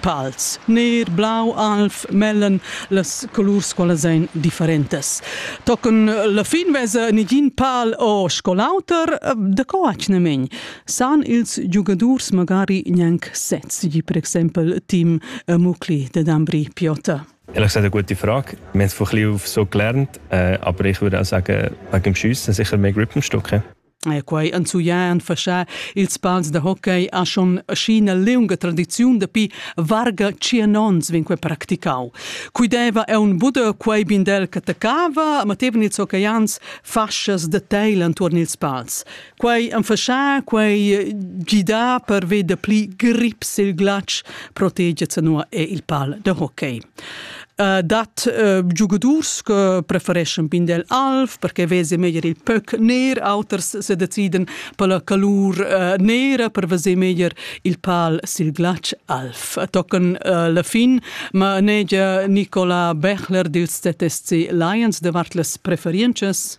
Pals, ner, blau, alv, mellen, las colurs qualas ein differentas. Tochen la fin vesa negin pal o sco l'auter, da co atgnamein san ils giugadurs magari gnanc sez, di per exempel Tim Mucli de Dambri Piota. Ehrlich gesagt, ein gute Frage. Wir haben es von klein auf so gelernt, äh, aber ich würde auch sagen, wegen dem Schiessen sicher mehr Grip am Stück. quai enzuglià han faschà ils pals da hockey a schon sc'ina liunga tradiziun dapi varga tschien onns vegn quai practicau. Cui deva è un buda quai bindel che taccava, ma tevan ils hockeyians fascias da teil enturn ils pals. Quai han faschà, quai gidà per ved da pli grip sil glatsch protegia zanua e il pal da hockey. Uh, dat uh, giugadurs che prefereschan pindel alv perché vese meglier il pöc ner, auters se deciden per la calur uh, nera per veser meglier il pal sil glatsch alv. Tocken uh, la fin, ma negia Nicola Bechler dils ZSC Lions davart las preferiences?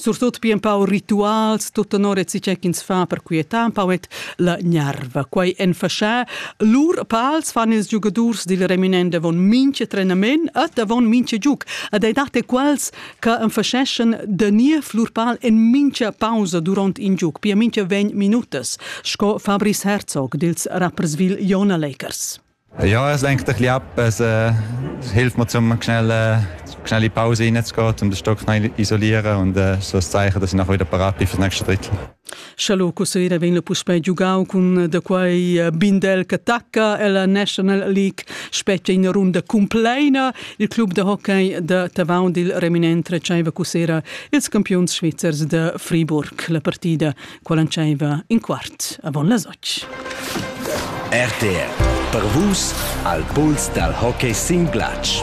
surtut pia empau rituals, tut tenor e tgei ch'ins fa per quietar empau et la gnerva. Quei en fascha. Lur pals fan ils giugadurs dil reminent avon minche trenament et avon minche giug. Ed ei dat quels che enfasceschen de niev lur pal en mincha pausa duront in giug, pia mincha ventg minutas, sco Fabrice Herzog dils Rapperswil Jona Lakers. Ja, es lenkt ein bisschen ab. Es äh, hilft mir, um schnell, äh, schnell in die Pause reinzugehen, um den Stock schnell isolieren und äh, so ein Zeichen, dass ich nachher wieder parat bin für das nächste Drittel. Scialoco sera venne puspei giugau cun eh, da quei eh, Bindel che tacca e la National League spetga in runda compleina. Il club da hockey da Tavau dil reminent retscheiva cu sera ils campions svizzers da Friburg. La partida quell'entscheiva in quart avon las otg. RTR per vus al puls dal hockey sin glatsch.